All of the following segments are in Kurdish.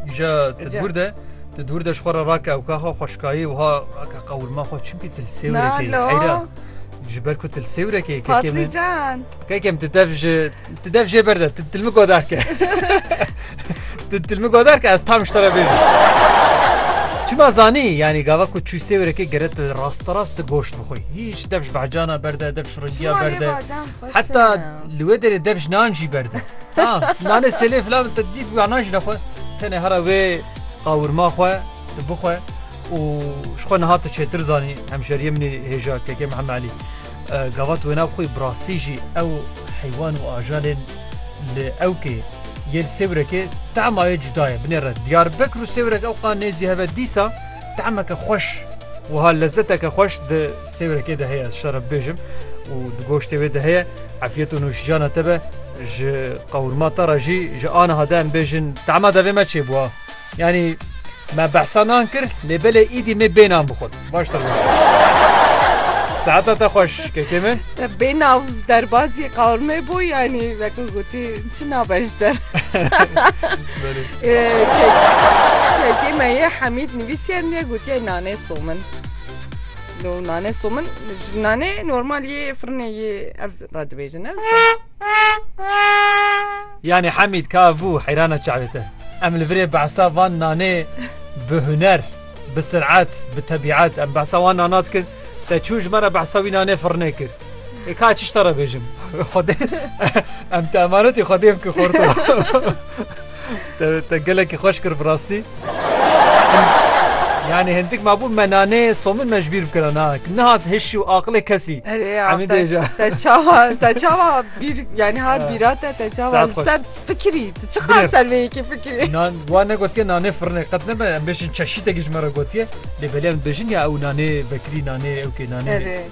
Îja ti dûr de ti dûr de ji xwe re rake ewka xwe xweşkayê wiha rake qewirma xwe çimkî til sêwrekê heyra ji ber ku til sêwrekê patlıcan kekem ti dev ji ti dev jê berde ti tilmi godar ke ti tilmi godar ke ez tam ji te re bêjim Çima zanî yanî gava ku çû sêwrekê geret rasta rast goşt bixwî hîç dev ji behcana berde dev ji riziya berde Heta li wê derê dev ji nan jî berde. Nanê selê filan te dît wî nan jî nexwe. Tenê hera wê qawirma xwe tu bixwe û ji xwe niha tu çêtir zanî hemşeriyê min hêja KK Mihemed Elî. Gavat wê nav xwe bi rastî jî ew heywan û ajalên li ewkê yê li sêwrekê tema yê cuda ye. Binêre Diyarbekir û sêwrek ewqa nêzî heve dîsa temeke xweş wiha lezeteke xweş di Sêwrekê de heye şara bibêjim û di goştê wê de heye efiyet û nûşijana te be ji qewrma te re jî ji aniha de em bêjin tema de vê me çêbûa yanî me behsa nan kir lê belê îdî mê bê nan bixwin baştir Saeta te xweş kekê min Te bê nav derbazî qewrmê bû yanî vekû gotî çi nabeş der Kekê me yê Hemîd nivîsiye niye gotiye nanê somin. No nane somin ji nane normal yê firnê yê ev re dibêjin ez. Yanî Hemîd ka vû heyrana çavê te. Em li virê behsa van nanê bi huner, bi sirat, bi tebîat em behsa wan nana dikin. Te çû ji me re behsa wî nanê firnê kir? E ka çi ştara bêjim Xwedê em te emanetê Xwedê em ki xorto te gelekî xweş kir bi rastî Yani hindik mabû me nanê somin me ji bîr bikira na nihat hiş û aqilê kesî Emî dê ja te çawa te çawa bîr yani hat bîra te te çawa ser fikirî tu çi xas ser vê yekê fikirî Nan wan ne gotiye nanê firinê qet nebe em bêjin çeşîtekî ji me re gotiye lê belê em dibêjin ya ew nanê vekirî nanê ew kê nanê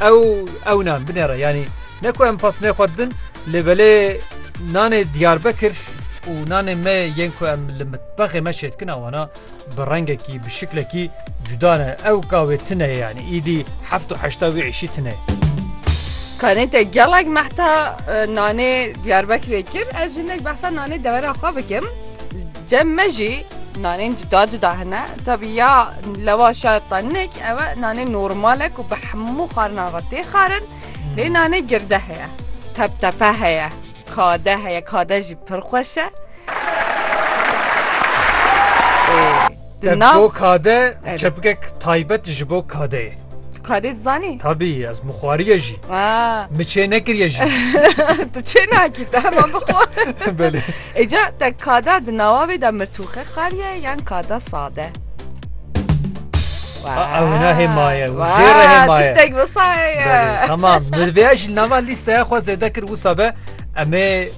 Ew ew nan binêre yanî ne ku em pasnê xwe didin lê belê nanê Diyarbekir û nanê me yên ku em li mitbexê me çêdikin a wana bi rengekî bi şiklekî cuda ne ew ka wê tune ye yanî îdî heft û heşta wê êşî tune ye. Kanê te gelek mehta nanê Diyarbekirê kir ez jinek behsa nanê devera xwe bikim. Cem me jî nanên cuda cuda hene. Tevî ya lewaş ya tenik ew e nanê normal e ku bi hemû xarinan re tê xarin. Lê nanê girde heye, teptepe heye, kade heye, kade jî pir xweş e. Di nav Bo kade Evet. çepgek taybet ji bo kadeyê. Tu kadê dizanî? Tabî ez mixwariye jî. Ha. Mi çê nekiriye jî. tu çê nakî te heman bixwe. Belê. Êca te kada di nawa vê de mirtûxe xariye yan kada sade. Ew hêna hêmaye û jê re hêmaye. Tiştek visaye. Tamam. Nirvêya jî nava lîsteya xwe zêde kir wisa be em ê